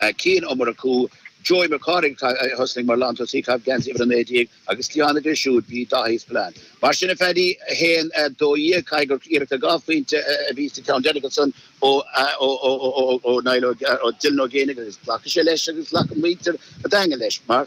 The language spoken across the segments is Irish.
a chinn ó imirt acu, Joey Mac Cárthaigh, a thosnaigh mar lántosaí, ag caitheamh geansaí uimhir 19, agus ceann aige siúd, b'é Dáithí Spillane. Mar sin a Phaddy, 1, 12, caithfidh gur iarracht ar dhá phointe a bhí sa cheann deiridh ansan ó Niall, ó Dylan Ó Géibheannaigh agus ghlac sé leis agus ghlac muintir an Daingin leis mar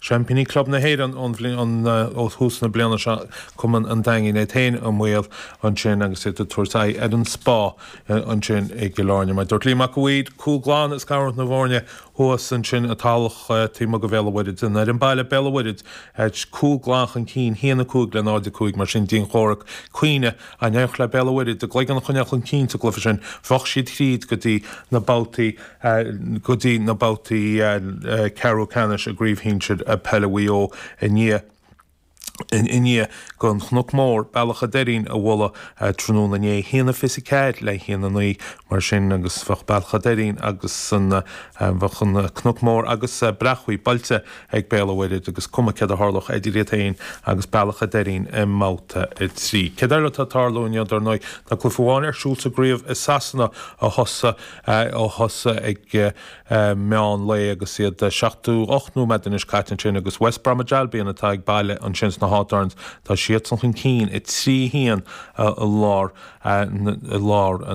Seaimpíní Club na hÉireann ón bhliain ó thús na bliana seo, Cumann an Daingin, iad féin i mbaol ansin agus iad ag tabhairt aghaidh ar an Spá ansin i gCill Airne. Mar a dúirt Liam Mac, go bhfuil cúl glan ag scaradh na bhfoirne thuas ansin i dTallach taobh amuigh de Bhéal an Mhuirthead. An fhoireann baile, Béal an Mhuirthead, cúl glan chun cinn, 1 5 le 0 5. Mar sin, dianchomhrac, cinnte, dá n-éireodh le Béal an Mhuirthead a gcloigeann a choinneáil chun cinn sa gcluiche sin, bheadh siad thríd go dtí na babhtaí. go dtí na babhtaí ceathrú ceannais i gCraobh Shinsir Peile Mhaigh Eo i ndiaidh i ndiaidh don Chnoc Mór, Bealach a' Doirín, a bhualadh tráthnóna inné. A haon a fiche a ceathair le haon a naoi, mar sin, agus bheadh Bealach a' Doirín agus an, bheadh an Cnoc Mór agus Breacmhaigh buailte ag Béal a' Mhuirthead agus cuma céard a tharlódh idir iad féin agus Bealach a' Doirín i mbabhta a trí. Céard eile atá ag tarlú inniu, dar ndóigh, tá cluiche amháin ar siúl sa gcraobh i Sasana a thosaigh a thosaigh ag meán lae agus iad seachtó ocht nóiméad anois caite ansin agus West Bromwich Albion atá ag baile ansin sna Hawthorns, tá siadsan chun cinn a trí, a haon i láthair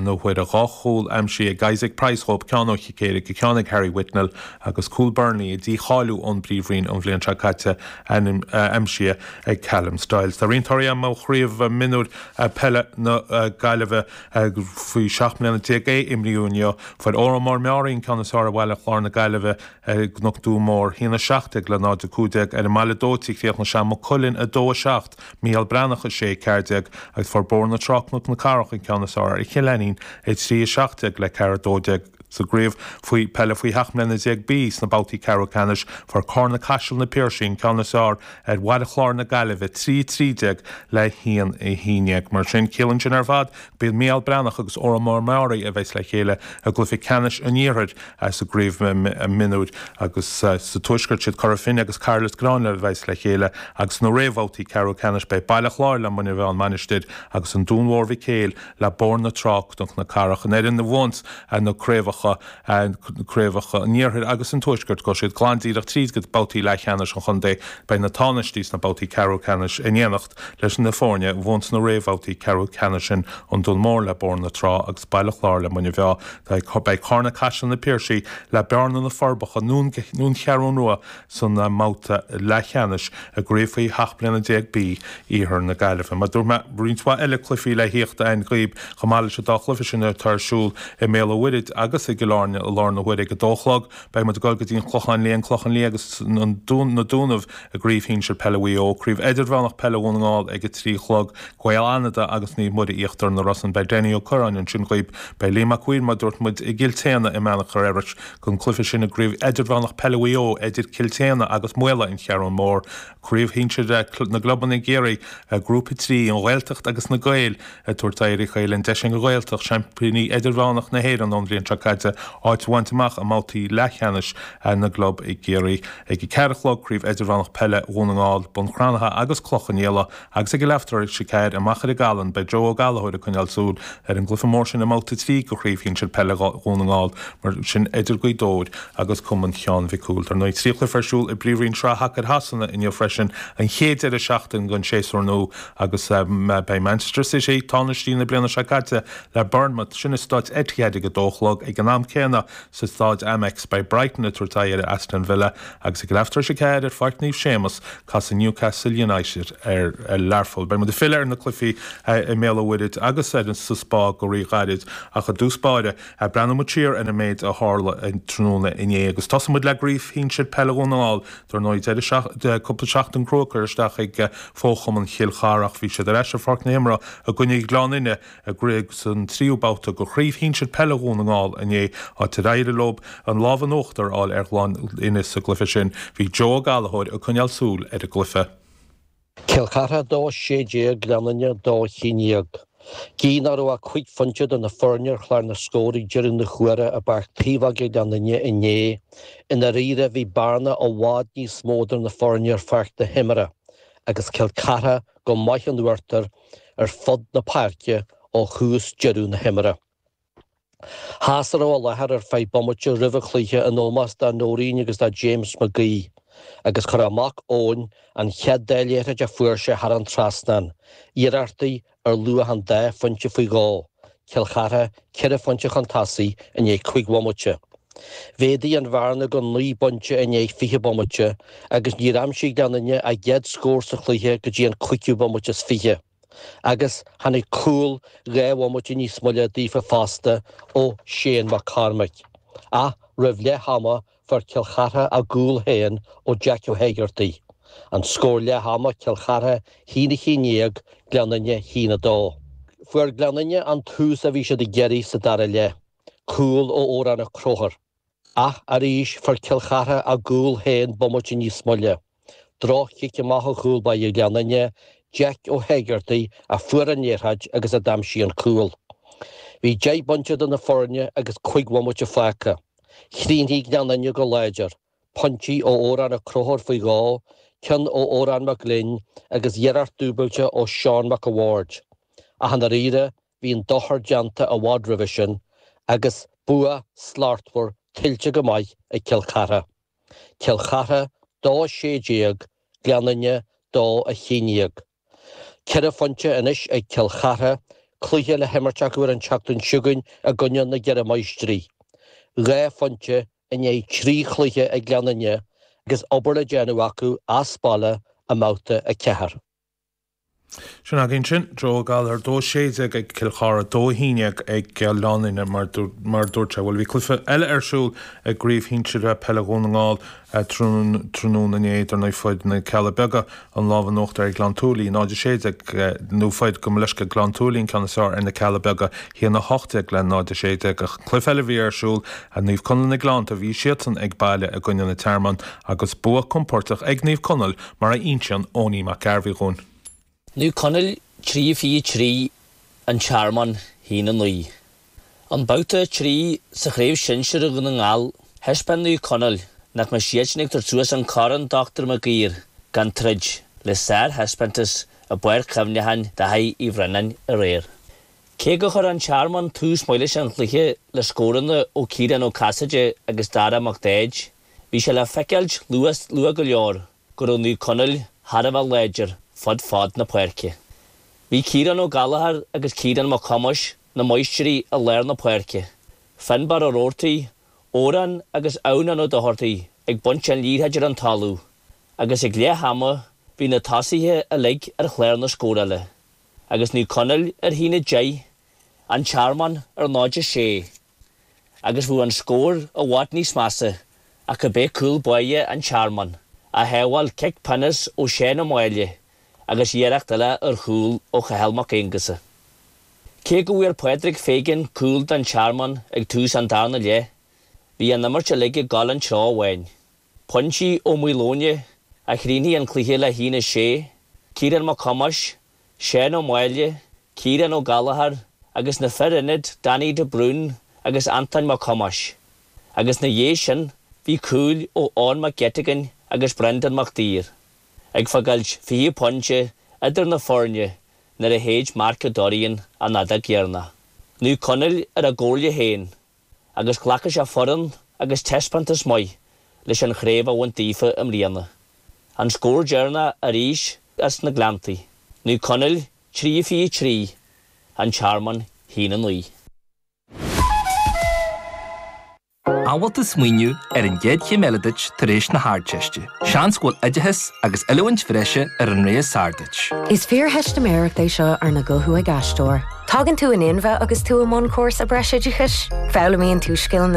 na huaire. Dhá chúl aimsithe ag Isaac Price dhóibh, ceann ó chic éirice agus ceann ag Harry Whitwell agus cúl Burnley, a dícháilíodh ón bPríomhroinn an bhliain seo caite, aimsithe ag Callum Styles. Tá roinnt torthaí agam ó Chraobh Mionúir Peile na Gaillimhe, ag faoi seacht mbliana déag A a imríodh inniu, fuair Órán Mór Meáraí an ceann is fearr ar Bhaile Chláir na Gaillimhe, i gCnoc Tua Mór, 1 17 le 0 15. Ar an mBaile Dóite, chríochnaigh sé Maigh Cuilinn 2 7, Mícheál Breathnach 6 14, agus fuair Bóthar na Trá Cnoc na Cathrach an ceann is fearr ar Chill Ainnín 3 17 le 4 12. Sa gcraobh faoi peile faoi sheacht mbliana déag B, sna babhtaí ceathrú ceannais, fuair Carna-Caiseal na Piarsaigh an ceann is fearr, ar Bhaile Chláir na Gaillimhe, 3, 13 le 1, 11. Mar sin, ciallaíonn sin ar fad go b'iad Mícheál Breathnach agus Órán Mór Meáraí a bheas le chéile i gcluiche ceannais an Iarthair sa gCraobh Mionúir agus sa Tuaisceart is iad Cora Finne agus Cathair Loistreáin a bheas le chéile agus sna réamhbhabhtaí ceathrú ceannais beidh Baile Chláir le Muine Mheá-An Mhainistir agus An Dún Mór-Mhic Éil le Bóthar na Trá-Cnoc na Cathrach. An fhoireann a bhuann na craobhacha craobhacha an iarthair agus an tuaiscirt, gabhfaidh siad glan díreach tríd go dtí babhtaí leathcheannais an chontae. Beidh na tánaistí sna babhtaí ceathrú ceannais in éineacht leis na foirne a bhuann sna réamhbhabhtaí ceathrú ceannais sin, An Dún Mór le Bóthar na Trá agus Baile Chláir le Muine Mheá. Beidh Carna-Caiseal na Piarsaigh le Bearna-Na Forbacha nó An Cheathrú Rua san mbabhta leathcheannais i gCraobh Faoi 17 bliana B iarthar na Gaillimhe. Mar dúirt mé, roinnt mhaith eile cluichí le thíocht a'ainn dhaoib, chomh maith leis an dá chluiche sin atá ar siúl i mBéal a' Mhuirthid agus i gCill Airne ag a dó a chlog. Beidh muid ag dul go dtí an Clochán Liath, an Clochán Liath agus Na Dúnaibh i gCraobh Shinsir Peile Mhaigh Eo, Craobh Eidirmheánach Peile Dhún na nGall ag a trí a chlog, Gael Fhanada agus Naomh Muire Íochtar na Rosann. Beidh Danny Ó Curráin ansin dhaoib. Beidh Liam Mac Uidhir, mar dúirt muid, i gCill tSéadhna i mBeannchor Iorrais, Don chluiche sin i gCraobh Idirmheánach Peile Mhaigh Eo idir Cill tSéadhna agus Maolla an Cheathrún Mór, craobh shinsir na gclubanna i gCiarraí, grúpa 3, An Ghaeltacht agus Na Gaeil, ag tabhairt aghaidh ar a chéile, an deis ag an nGaeltacht, seaimpíní idirmheánach na hÉireann ón bhliain seo caite, áit a bhaint amach i mbabhtaí leathcheannais na gclub i gCiarraí. Ag a ceathair a chlog, Craobh Idirmheánach Peile Dhún na nGall, Bun Cranncha agus Cloich Cheann Fhaola, Agus ag a leathuair tar éis a ceathair i Machaire Gathlán beidh Joe Ó Gallachóir ag coinneáil súil ar an gcluiche mór sin i mBabhta trí de Chraobh Shinsir Peile Dhún na nGall, mar sin idir Gaoth Dobhair agus Cumann Sheáin Mhic Cumhaill. Dar ndóigh, trí chluiche ar siúl i bPríomhroinn Shraith Shacair Shasana inniu freisin, an chéad deireadh seachtaine don séasúr nua agus beidh Manchester City, tánaistí na bliana seo caite, le Bournemouth, sin i Staid Etihad ag a dó a chlog. Ag an am céanna, sa Staid Amex, beidh Brighton ag tabhairt aghaidh ar Aston Villa agus ag a leathuair tar éis a ceathair ar Pháirc Naomh Séamas Casfaidh Newcastle United ar Learpholl. Beidh muid ag filleadh ar na cluichí i mBéal an Mhuirthead agus sa Spá go ríghairid ach i dtús báire, breathnóidh muid siar ar an méid a tharla tráthnóna inné agus tosóidh muid le Craobh Shinsir Peile Dhún na nGall. Dar ndóigh, deireadh cúpla seachtain chrua curtha isteach ag fo-chumann Chill Chartha ach bhí siad ar ais ar pháirc na himeartha i gcoinne Gleann Fhinne i gcraobh san tríú babhta de chraobh shinsir peile Dhún na nGall inné, áit ar éirigh leo an lámh in uachtar a fháil ar Ghleann Fhinne sa gcluiche sin. Bhí Joe Ó Gallachóir ag coinneáil súil ar an gcluiche. Cill Chartha 2, 16 Gleann Fhinne 2, 11. Gidh nach raibh ach cúig phointe idir na foirne ar chlár na scór ag deireadh na huaire i bPáirc Taobhóige Gleann Fhinne inné, i ndáiríre bhí bearna i bhfad níos mó idir na foirne ar pháirc na himeartha agus Cill Chartha go maith in uachtar ar fud na páirce ó thús deireadh na himeartha. Sheas a raibh i láthair ar feadh bomaite roimh an chluiche in ómós do Noreen agus do James McHugh agus chuir a mac Eoin an chéad dá liathróid a fuair sé thar an trasnán iarrachtaí ar luach an dá phointe ag fágáil Cill Chartha, ceithre phointe chun tosaigh i ndiaidh cúig bhomaite. Mhéadaigh an bhearna go naoi bpointe i ndiaidh fiche bomaite agus níor aimsigh Gleann Fhinne a gcéad scór sa chluiche go dtí an cúigiú bomaite is fiche, agus tháinig cúl dhá bhomaite níos moille daofa fosta ó Shane Mac Cormaic. Ach roimh leath ama, fuair Cill Chartha a gcúl féin ó Jeaic Ó hÉigeartaigh, an scór leath ama, Cill Chartha, a haon a haon déag, Gleann Fhinne, a haon a dó. Fuair Gleann Fhinne an tús a bhí siad ag iarraidh sa dara leath, cúl ó Odhrán Ó Cróthar. Ach arís, fuair Cill Chartha a gcúl féin bomaite níos moille. Droch-chic amach ó chúl báire Ghleann Fhinne, Jeaic Ó hÉigeartaigh, a fuair an liathróid agus a d'aimsigh an cúl. Bhí deich bpointe idir na foirne agus cuig bhomaite fágtha. Chríochnaigh Gleann Fhinne go láidir, pointí ó Odhrán Ó Crothóir faoi dhó, ceann ó Odhrán Mac Gloinn agus iarracht dúbailte ó Seán Mac a' Bhaird. Ach i ndáiríre, bhí an dochar déanta i bhfad roimhe sin agus bua slachtmhar tuillte go maith ag Cill Chartha. Cill Chartha, Dó 16, Gleann Fhinne, Dó 11. Ceithre phointe anois ag Cill Chartha, cluiche le himirt acu ar an tseachtain seo chugainn i gcoinne na gCeithre Máistrí. Dhá phointe i ndiaidh trí chluiche ag Gleann Fhinne agus obair le déanamh acu as baile i mBabhta 4. Sin agaibh ansin Joe Gallagher, dó sé déag ag Cill Chartha, dó a haon dhéag ag Gleann Fhinne, mar a dúirt sé. Bhuel, bhí cluiche eile ar siúl i gCraobh Shinsir Peile Dhún na nGall tráthnóna inné idir, nó fuair na Cealla Beaga, an lámh in uachtar ar Ghleann tSúilí, 0, 16, nó fuair, gabh mo leithscéal, Gleann tSúilí an ceann is fearr ar na Cealla Beaga, 1, 18, le 0, 16. Ach cluiche eile a bhí ar siúl, Naomh Conaill na Gleannta, bhí siadsan ag baile i gcoinne an Tearmainn agus bua compordach ag Naomh Conaill, mar a inseann Owenie Mac Gairbheith dhúinn. Naomh Conaill 3-23 an Tearmann 1-9. I mbabhta 3 sa chraobh shinsir Dhún na nGall, thaispeáin Naomh Conaill nach mbeadh siadsan ag tabhairt suas an corn Dr Maguire gan troid le sárthaispeántas i bPáirc Chuimhneacháin Dháithí Uí Bhraonáin aréir. Cé gur chuir an Tearmann tús maith leis an chluiche le scóranna ó Chiarán Ó Casaide agus Dara Mac Daid, Bhí sé le feiceáilt luath go leor go raibh Naomh Conaill thar a bheith láidir fud fad na páirce. Bhí Ciarán Ó Gallachóir agus Ciarán Mac Thomáis 'na maistirí i lár na páirce, Finnbarr Ó Roartaigh, Odhrán agus Adhamhnán Ó Dochartaigh ag baint an liathróid ar an talamh agus ag leath ama bhí na tosaithe uilig ar chlár na scórála agus Naomh Conaill ar 1-10, An Tearmann ar 0-6. agus bheadh an scór i bhfad níos measa ach go b'é cúl báire an Tearmann a shábháil cic pionós ó Sheán Ó Máille agus iarracht eile ar chúl ó Chathal Mac Aonghusa. Cé go bhfuair Pádraig Feighan cúl don Tearmann ag tús an darna leath, bhí an imirt uilig ag dul an treo amháin. Pointí ó Maoileoin a chríochnaigh an cluiche le haon a sé, Ciarán Mac Thomáis, Seán Ó Máille, Ciarán Ó Gallachóir agus na fir ionaid Danny de Brún agus Antoin Mac Thomáis agus ina dhiaidh sin bhí cúil ó Eoin Mac Geitigin agus Brendan Mac Duibhir ag fagáilt fiche pointe idir na foirne nuair a shéid Mark O Dorrian an fheadóg dheireanach. Naomh Conaill ar a gcomhairle féin. agus glacfaidh sé foireann agus taispeántas maith leis an chraobh a bhaint daofa i mbliana. An scór deireanach arís as na Gleanntaí, Naomh Conaill 3 fiche 3, An Tearmann a hAon 9. An bhfuil tú ag smaoineamh ar an gcéad chéim eile duit tar éis na hArdteiste? Seans go bhfuil oideachas agus oiliúint bhreise ar an rogha is fearr duit. Is fíortheistiméireacht é seo arna guthú ag aisteoir. Tagann tú in inmhe agus tú i mbun cúrsa breisoideachais. Foghlaimíonn tú scileanna